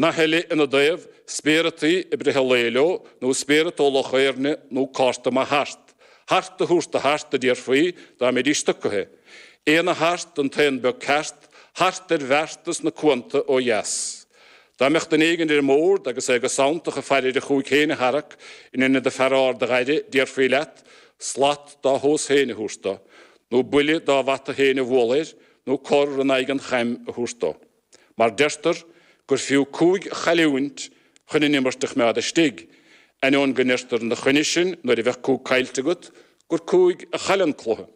Nath eile ina dtaobh, spéireataí a briseadh lao leo, nó spéireat ó Loch Éirne, nó cárta maith hart. Hart a thabhairt do hart, a déarfaí, dá mbeidís tugtha. Aon a hart, an t-aon beag ceart, hart ar bhearta sna cuanta ó dheas. Dá mbeadh duine éigin ar an mbord agus é go santach ag faire ar a chúig féin a tharrac in inead an fear ard a dh'fhaire, déarfaí leat, slat dá thomhas féin a thabhairt dó, nó buille dá bhata féin a bhualadh air, nó cor in aghaidh an chaim a thabhairt dó. mar deirtear gur fiú cúig a chailliúint chun an imirt a choimeád istigh, ainneoin go ndeirtear ina choinne sin nuair a bheadh cúig caillte agat gur cúig a chaill an cluiche.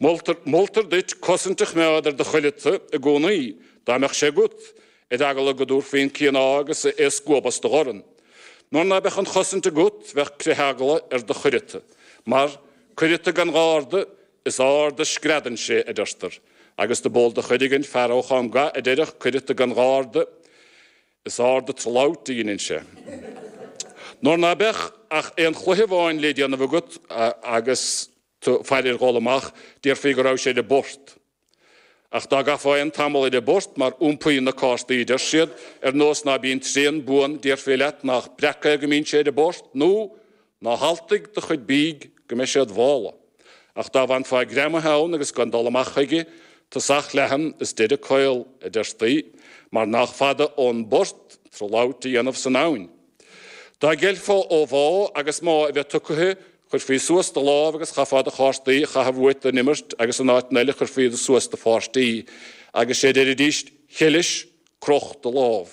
Moltar, moltar duit cosaint a choimeád ar do chuileata i gcónaí, dá mbeadh sé agat, ar eagla go dtabharfaí an cíoná agus é a scuabadh as do dhorn. Nuair ná beadh an chosaint agat bheadh critheagla ar do chuireata, mar cuireata gan gharda Is ard a screadann sé, a deirtear, agus dob eol do chuid againn fear ó Chom Ga a deireadh cuireata gan gharda, is ard a tslabht a dheineann sé. Nuair ná beadh ach aon chluiche amháin le déanamh agat agus tú ag faire ar dhul amach, déarfaí go raibh sé ar a bport. Ach dá gcaithfeá aon tamall ar a bport, mar iompaíonn na cártaí, deir siad, ar nós ná bíonn tréan buan, déarfaí leat nách breac é go mbíonn sé ar a bport, nó Ná haltaigh do chuid bídh go mbeidh sé id mhála, ach dá bhfanfá greamaithe ann agus gan dul amach chuige, tosach leathan is deireadh caol, a deirtí, mar nách fada ón bport trlaught a dhéanamh san abhainn. Dá gceilfeá ó mhá agus má a bheith tugtha, chuirfí suas do lámh agus chaithfeá do chártaí a chaitheamh uait don imirt agus in áiteanna eile chuirfí suas do pháirtí agus sé déarfaidís, Cheilis, croch do lámh.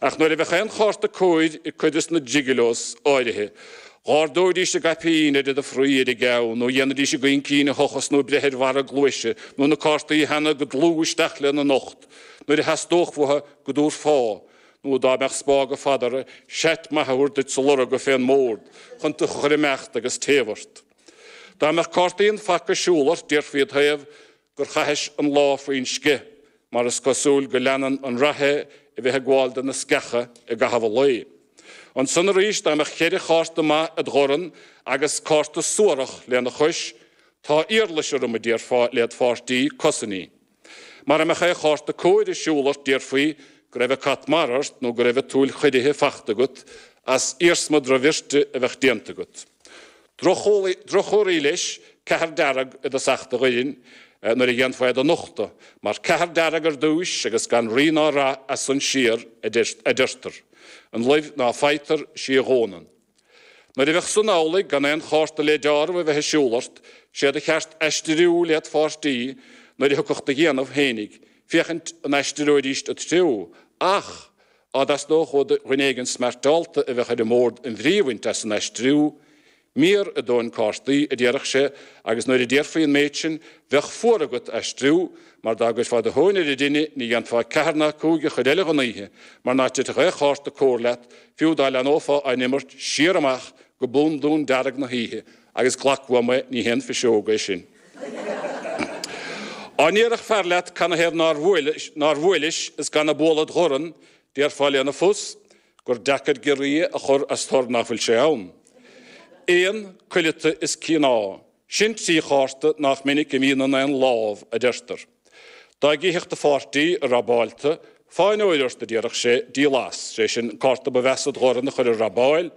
Ach nuair a bheadh aon chárta cóir ag cuid de na jigilos áirithe, dh'ardóidís a gcaipín ar fhad a fraoigh ar an gceann nó dhéanfaidís a gcaincín a thochas nó breith ar bharra a gcluaise nó na cártaí a theannadh go dlúth isteach lena n-ucht nuair a theastódh uathu go dtabharfá nó dá mbeadh spága fada orthu seat maith a thabhairt duit sa lorga fén mbord chun tú a chur ag imeacht agus taobh ort. Dá mbeadh cártaí an phaca ag siúl ort déarfaí id thaobh gur chaithis an lá faoin sceich, mar is cosúil go leanann an rath é a bheith ag gabháil do na sceacha i gcaitheamh an lae. Ansan arís, dá mbeadh cheithre chárta maith id dhorn agus cárta suarach lena chois, tá iarlais orm, a déarfá led pháirtí, cosain í. Mara mbeadh aon chárta cóir ar siúl ort déarfaí go raibh an cat mara ort nó go raibh an tsúil chiorraithe fachta agat as iarsma drochbhirte a bheadh déanta agat. Droch-chomharthaí leis, ceathair dearg i dtosach do dhoirn, nuair a dhéanfá é do nochtadh, mar ceathair dearg ar dtúis agus gan rí ná rath as san siar, adeirtear. An luibh ná faightear, 'sí a fhónann. Nuair a bheadh san amhlaidh, gan aon chárta le deáramh a bheith ag siúl leat, 'sé do cheart aistiriú led pháirtí nuair a thiocfadh do dhéanamh féinig, féachaint an aistreoidíst an treó, ach á dteastódh ó dhuine éigin smartálta a bheadh ar an mbord an bhrí a bhaint as an aistriú, mír a dó an cártaí, a déarfadh sé, agus nuair a déarfaí an méid sin, bheadh fuar agat aistriú, mar dá gcuirfeá do thóin ar an dtine, ní dhéanfá ceathair ná cúig an chuid eile den oíche, mar ná titfeadh aon chárta cóir leat, fiú dá leanófá á n-imirt siar amach go bundún dearg na hoíche, Agus glac uaim é, ní haon phiseog é sin. Á ndéarfadh fear leat canathaobh ar nár bhuail, nár bhuailis is gan an bualadh id dhorn, déarfá lena phus gur deacair giorria a chur as tor ná fuil sé ann. Aon, cuileata is cíoná, sin trí chárta nach minic a mbíonn in aon lámh, a deirtear. Dá gcífeadh do pháirtí ag rabáil tu, fáinne óir ort a déarfadh sé, díol as, sé sin an cárta ba mheasa id dhorn a chur ar rabáil,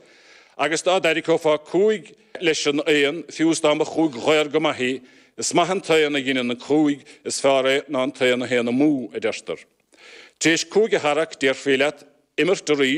agus dá dtarraiceofá cúig leis an aon, fiú is dá mba chúig dhaor go maith í, is maith an t-aon a dheineann an cúig, is feárr é ná an t-aon a théann amú, a deirtear. Tar éis cúig a tharrac déarfaí leat imirt arís,